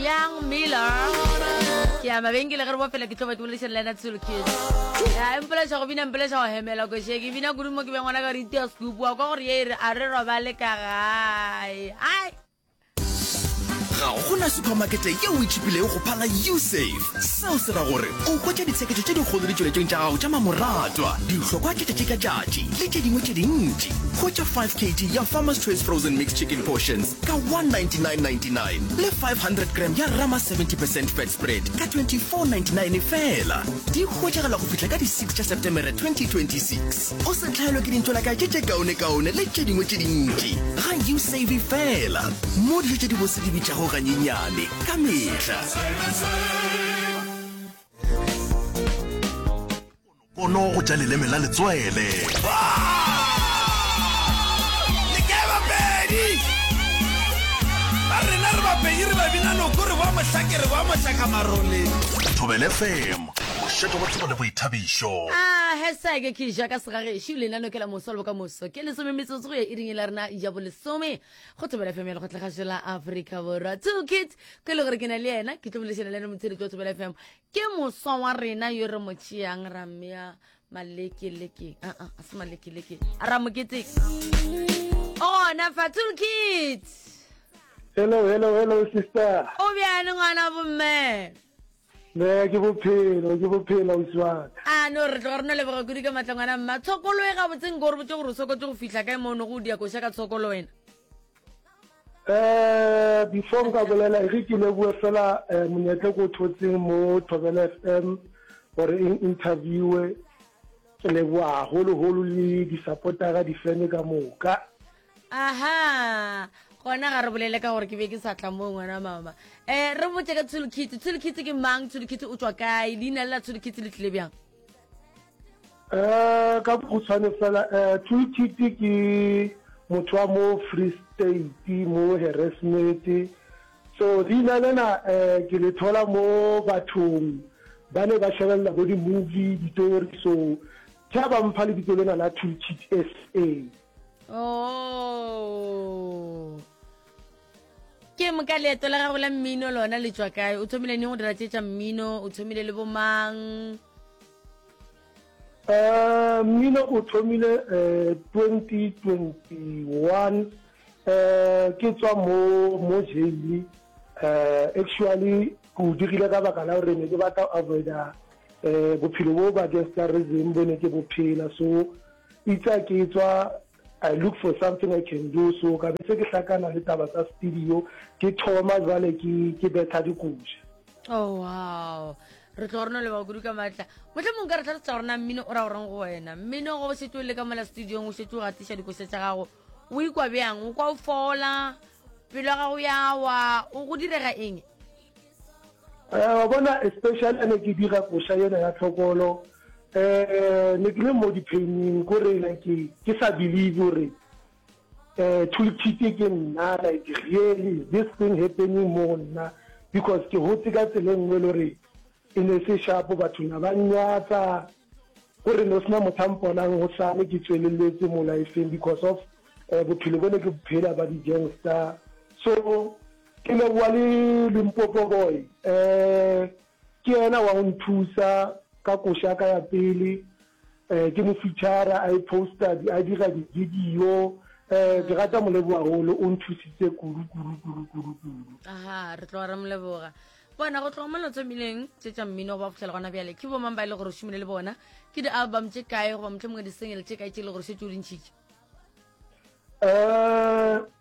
Young Miller ke ya mabenkele ge re bofela ke tloba ke bolešere le ena tselo kid ya empoleša go bina empoleša go hemela ko sheke bina kudu mo ke beng gona ka re itea scoop wa kwa gore ye e re a re robale ka gae ai ga gona supermarkete yeo e tšhipilego go phala usafe Seo se ra gore o hwetša ditsheketšo tše dikgolo ditšweletšong tša gago tša mamoratwa, dihlokwa tša tšatši ka tšatši le tše dingwe tše dintši. Hwetša 5 kg ya Farmer's Choice Frozen Mixed Chicken Portions ka 199.99 le 500 gram ya Rama 70 percent Fat Spread ka 24.99 feela. Di hwetšagala go fihla ka di 6 tša Setemere 2026. O se hlaelwe ke dintšolakatše tše kaonekaone le tše dingwe tše dintši. Ga U-Save feela mo dijo tše dibotse di bitšago ganyenyane ka mehla. kono go ja leleme la letswele thobele fm bošetho bo tsebo le boithabišo a hasake ke ja ka segagešo lenaneo ke la moso le bokamoso ke lesome metsotso go ya iring e la rena ya bolesome go thobela fm ya lekgotlagašo la afrika borwa two kids ko e le gore ke na le yena ke tlo bolešana le ene motsheditsi wa thobela fm ke moswa wa rena yo re mo tšeang ra mmea malekeleke aa ah, ah, a se malekeleke a ra mokete ona fa two kids hello hello hello sister o bjane ngwana bomme Ne ke bophelo, ke bophelo ausi wa ka. A no re tloga re no leboga kudu ka matla ngwana mma. Tshokolo e gabotseng ko re botse gore o sokotse go fihla kae mo o nogo o dia koša ka tshokolo wena. Eh, before nka bolela e re ke leboe fela eh, monyetle ko thotseng mo Thobela FM gore e interviewe ke leboa haholo holo le di supportera di fene ka moka. aha gona ga re bolele ka gore ke be ke sa tla mo ngwana mama um re botse ka tshulukitse tshulukitse ke mang tshulukitse o tswa kae leina le la tshulukitse le tlile bjang um ka bokgutshwane fela um eh, tshulukitse ke motho wa mo free state mo harassmete so leina lena um ke le thola mo bathong ba ne ba shebelela bo di-movie ditori so tha ba mpha lebitso lena la tshulukitse s a oh ke moka leeto la gago la mmino lona le tswa kae o thomile neng go dira tse tsa mmino o thomile le bomang um mmino o thomile um twenty twenty one um ke tswa mo mo jaile um actually ke o dirile ka baka la gore ne ke batla avoida um bophelo bo ba gestarism bo ne ke bophela so Eitsa ke etswa, I look for something I can do, so ka be se ke hlakana le taba tsa studio, ke thoma jwale ke ke betha dikoša. Oh wow. Re tlo rona le ba kudu ka matla. Motle mong ka re tlhalosetsa rona mmino o ra o reng go wena. Mmino go se tlo le ka mola studio o se tlo ga tisha dikoša tsa gago. O ikwa bjang? O kwa o fola? Pelo ga go ya wa o go direga eng? Eh, wa bona especially ha ne ke dira koša yena ya tlhokolo um ne ke le mo diphening kore like ke sa believe gore um thulithite ke nna like really is this thing happening mo nna because ke gotse ka tsela nngwe e le gore e ne se shapo batho na ba nyatsa gore ne o sena motho a mponang go sane ke tsweleletse mo lifeng because of um bophelo bo ne ke bophela ba di-gangster so Ke leboa le Limpopo boy eh ke yena wa go nthusa ka koša ya ka ya pele eh ke mo feature a e poster di a dira di video eh ke rata mo leboa holo o nthusitse kudu kudu kudu kudu kudu aha re tlo re mo leboga bona go tloga mo lotso mmileng tse tša mmino go ba fitlhela gona bjale ke bomang ba e le gore o šomile le bona ke di-album tše kae goba motlho mongwe di-single tše kae tše e le gore šetse o di ntšhitše um eh,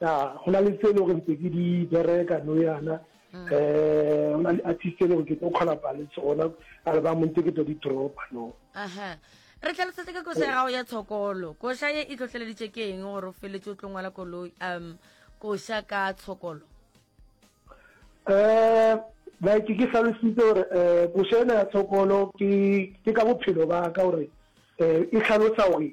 ya go na le tse e le gore ntse ke di bereka no yana um go na le artist e le gore ke tlo collaba le tsona album ntse ke tlo di dropa no aha re tlhalosetse ka koša ya gago ya tshokolo koša ye e tlotleleditše ke eng gore o feletse o tlo ngwala koloi um koša ka tshokolo um like ke tlhalositse gore um koša ena ya tshokolo ke ka bophelo ba ka gore um e tlhalosa gore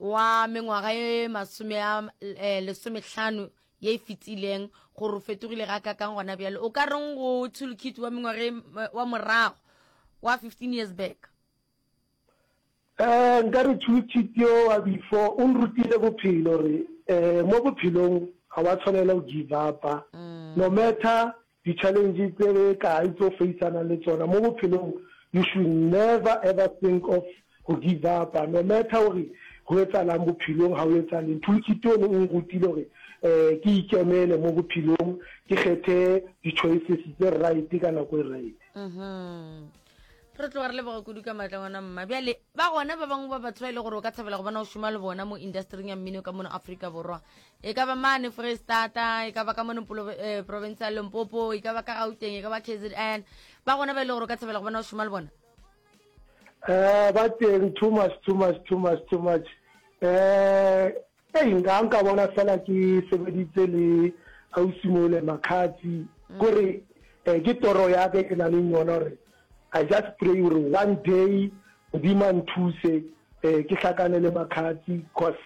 wa mengwaga ye masome a eh, lesomehlano ye e fetileng gore o fetogile ga kakang gona bjale o ka reng go tshulukit wa mengwaga e, eh, wa morago wa 15 years back um nka re tshulukit yo wa before o nrutile bophelo gore um mo bophelong ga wa tshwanela go give upa mm. no matter Di-challenge tse kae tse o faceanang le tsona mo bophelong, you should never ever think of go give up, no matter gore go etsalang bophelong, ga o etsale. Nthulukiti o ne o nrutile gore ke ikemele mo bophelong, ke kgethe di-choices tse right ka nako e right. re tloga re leboga kudu ka maatla ngwana mma bjale ba gona ba bangwe ba batho ba e le gore o ka thabela go bona o šoma le bona mo industring ya mmino ka mono aforika borwa e ka ba mane freestata e ka ba ka mono eh, province ya lempopo e ka ba ka gauteng e ka ba kzn ba gona ba e le gore o ka thabela go bona o šoma le bona um ba teng too much too much too much too much um Hei nka nka bona fela ke sebeditse le ausi mole makhatsi gore eh, ke toro ya ke ke na le yona gore i just pray gore one day modimo a nthuse eh, ke hlakane le makhatsi cause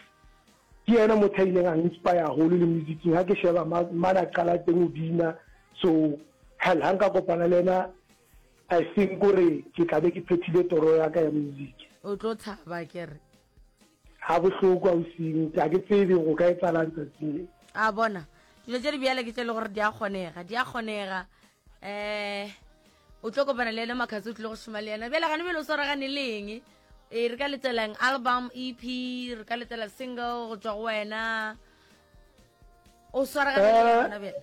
ke yena motho a ileng a inspire haholo le musicing ga ke sheba ma- mane a qala teng o bina so hell ga nka kopana le ena i think gore ke tla be ke phethile toro ya ka ya music o tlo thaba kere ga bohloko ausing a ke tsebe go ka etsalang tsatsing le a bona dilo tse di bjale ke tse le gore di a kgonega di a kgonega um o tlo kopana le ena makhatsi o tlile go šoma le ena bjale gane bjale o swaragane le eng e re ka letselang album ep re ka letsela single go tswa go wena o swaragane le ena bjale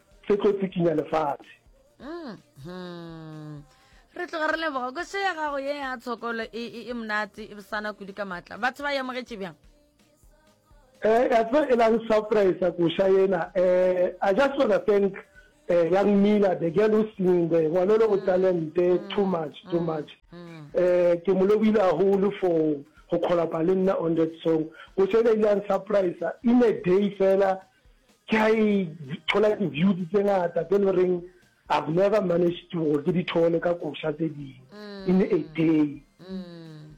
se tlo tsikinya lefatshe mm-hmm. re tloga re leboga ko se ya gago ye ya tshokolo e, e, e monate e bosana kudu ka maatla batho ba yamogetše bjang eh ya tlo e lang surprise ko sha yena eh i just want to thank eh young mila the girl who singing there ngwana lo o mm. talent eh, mm. too much too mm. much eh ke mo lobile a hole for go kgolapa le nna on that song ko sha ile ang surprise in a day fela ke a e thola di-views tse ngata tse le goreng i've never managed to gore ke di thole ka koša tse dingwe mm. in a day mm.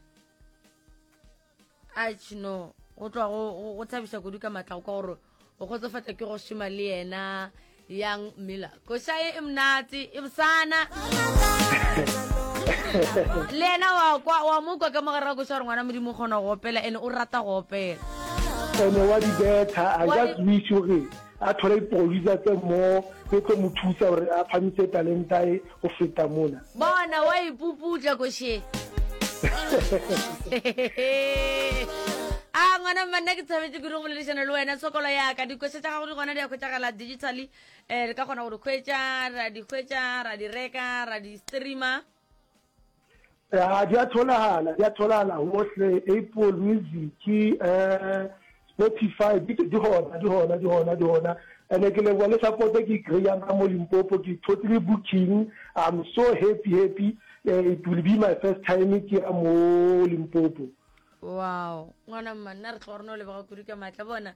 ach no go tloa go thabiša kudu ka matla go kwa gore o kgotsofatsa ke go šoma le yena yang miller koša ye e monate e bosana le yena wa kwa wa mo kwa ka mo gare ga koša gore ngwana modimo o kgona go opela ene o rata go opela ene wa di betha i Wa just di- wish gore a thole diproducer tse mo tse tlo mo thusa gore a phamise talenta e go feta mona bona wa ipuputša koše a ngwana mma nna ke tshabetse kudu go boledišana le wena tshokolo yaka dikoša tša gago di gona di ya kgwetšagala digitally eh re ka kgona go di hwetša ra di hwetša ra di reka ra di streama a di a tholagala di a tholagala gohle apple music um spotify di gona di gona di gona di gona and ke leboa le support ke kry-ang ka mo limpopo ke totally booking i'm so happy happy uh, it will be my first time ke ya mo limpopo wow ngwana mma nna re tlo rona o lebega kudu ka maatla bona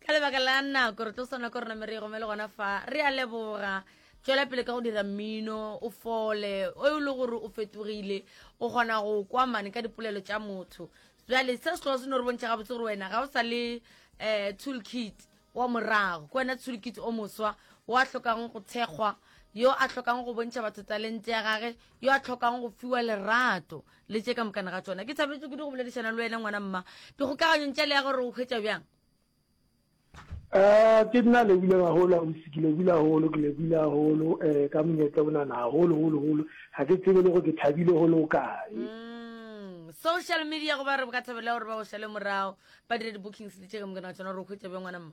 ka lebaka la nako re tlo swana ko rona mere e gome le gona fa re a leboga tswela pele ka go dira mmino o fole o e le gore o fetogile o kgona go kwa mane ka dipolelo tša motho jale se se tloga se no re bontšha gabotse gore wena ga o sa le um tool kit wa morago ke wena tool kit o moswa wa tlhokang go thekgwa yo a tlhokang go bontšha batho talente ya gage yo a tlhokang go fiwa lerato le tše ka mokana ga tsona ke thabeletse kudu go boledišana le wena ngwana mma dikgokaganyong tša le ya gore o hwetša bjang um ke nna lebile gagolo ausi ke lebile gagolo ke lebile gagolo um eh, ka monyetla o nana gagolo golo golo ga ke tsebe le go ke thabile go le o kae mm, social media go ba re ka thabela gore ba go šale morago ba dire di-bookings le tše ka mokana ga tsona gore o hwetša bjang ngwana mma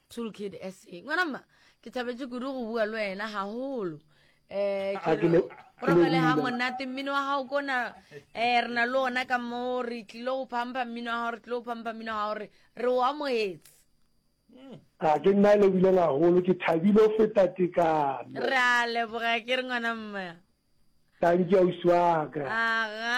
Tool Kid SA. Ngwana mma, ke thabetše kudu go bua le wena haholo. Eh, ah, ke robale ha monate mmino wa gago kona eh re na le ona ka mo re tlile go phampa mmino wa gago re tlile go phampa mmino wa gago re re o amogetse hmm. a ah, ke nna e lebileng gagolo ke thabile go feta tekano re a leboga ke re ngwana mma thank you ausi wa ka aga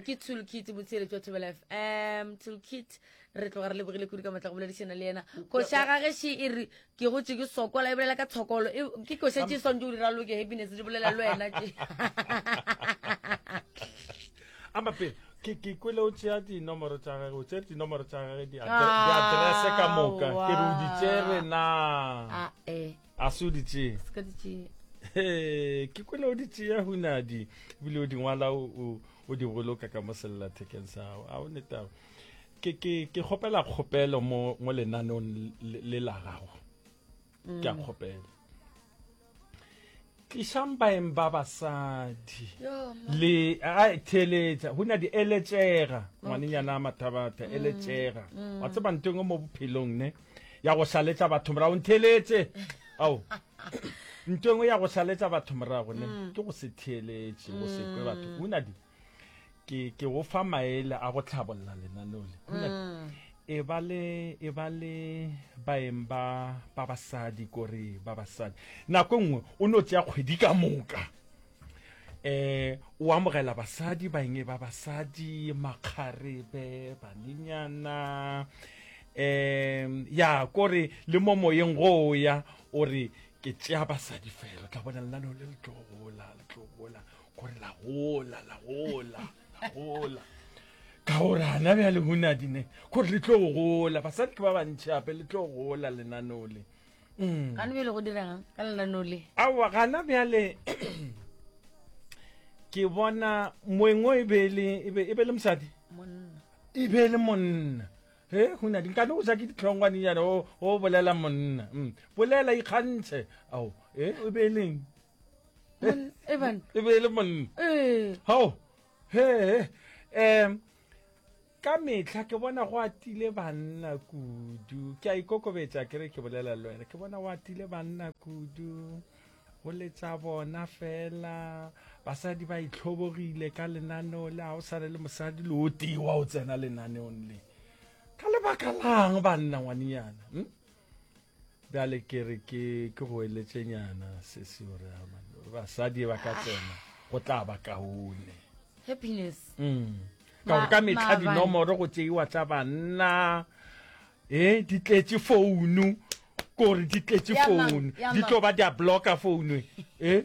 ke toolkit botshele jwa thobela f m toolkit re tloga re lebogile kudu ka matla go boledišana le yena koša ga gešo e re ke gotse ke sokola e bolela ka tshokolo e, ke koša tše swantse o di raloke happiness di bolela le wena tše amape ke ke kwele o tšea dinomoro tša gage o tšere dinomoro tša gage diaterese ka moka ke re o di tšere na ah, eh. a se o di tšee se ka di tšee He, ke kwene o di tšea hunadi ebile o di ngwala o- o o di boloka ka mo sellathekeng sa gago a o netago ke ke ke kgopela kgopelo mo mo lenaneong le- le la gago ke a kgopela Tlišang baeng ba basadi le a theeletša go na di eletšega ngwanenyana a mathabatha mm. eletšega mm. wa tseba ntho engwe mo bophelong ne ya go šaletša batho morago ntheeletse ao ntho engwe ya go šaletša batho morago ne mm. ke go se theeletše go sekwe batho go na di ke ke go fa maele a go tlhabolola lenaneo le mm. e ba le e ba le baeng ba ba basadi kore ba basadi nako e nngwe o ne o tsaya kgwedi ka moka eh o amogela basadi baeng e ba basadi makgarebe banenyana um ya kore le mo moyeng go o ya o re ke tšea basadi fela tla bona lenaneo le le tlogola le tlogola gore la gola la gola la gola ka gore gana bja lehunadi ne gore le tlo gola basadi ke ba bantšhi gape le tlo gola lenaneo le mm. gane bjale go dirang ka lenaneo le aowa gana bjale ke bona moeng o e be e, e, e le mosadi e be le monna he hunadi nkane o ja ke ditlhongwanenyana o bolela monna mm. bolela ikgantšhe ao e be e leng e bane e be e le monna ee hao he um ka metlha ke bona go atile banna kudu ke a ikokobetša ke re ke bolela le wena ke bona go atile banna kudu go letša bona fela basadi ba itlhobogile ka lenaneo le ga o swane le mosadi le o tewa o tsena lenaneong le ka lebaka lang banna ngwanenyana hm? bjale ke re ke ke go eletšenyana sesi gore basadi ba ka tsena go tla ba kaone happiness mm. ka gore ka metlha dinomoro go tseiwa tsa banna e di tletše founu kore di tletše founu di tlo ba di a blocka founu e eh?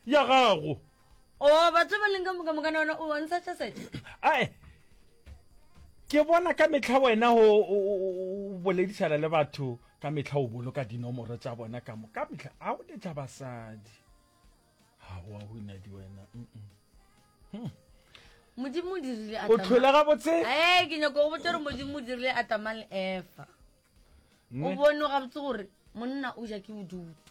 ya gago o batho ba leng ka moka mokana wena o bontsha tšasete ae ke bona ka metlha wena o boledišana le batho ka metlha o boloka dinomoro tša bona ka mo ka metlha a o letla basadi ga wa go inadi wena hmm. modimo o dirile o tlhole ga botse ee ke nyako go botse gore modimo o dirile atama le efa o bone ga botse gore monna o ja ke bodutu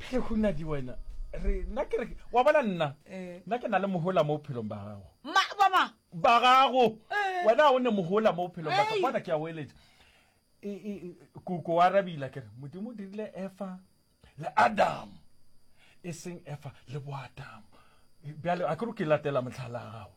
phele go nna di wena re nna ke re wa bona nna eh. nna ke na le mohola mo bophelong ba gago ba gago eh. wena ga o ne mohola mo bophelong ba gago bona ke ya oeletsa e, e, e, koko wa rabila ke re modimo o dirile efa le adam e seng efa le boadamo bjale a ke re ke latela motlhala gago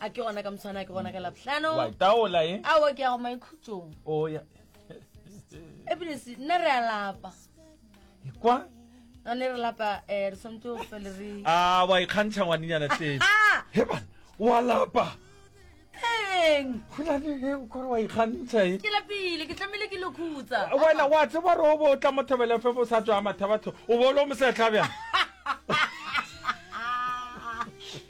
a ke gona ka moswana a ke gona ka labohlano wa taola e awa ke ya go maikhutsong o ya ebile se nna re a lapa kwa a ne re lapa um re tshwanetse go fele re a wa ikgantšha ngwanenyana tee heban wa lapa eng golane o kore wa ikgantšha e ke lapile ke tlamehile ke lokhutsa wena wa tseba re o bo o tla mo thobele fe bo sa tswa mathabatho o bo o le o mosetlha bjang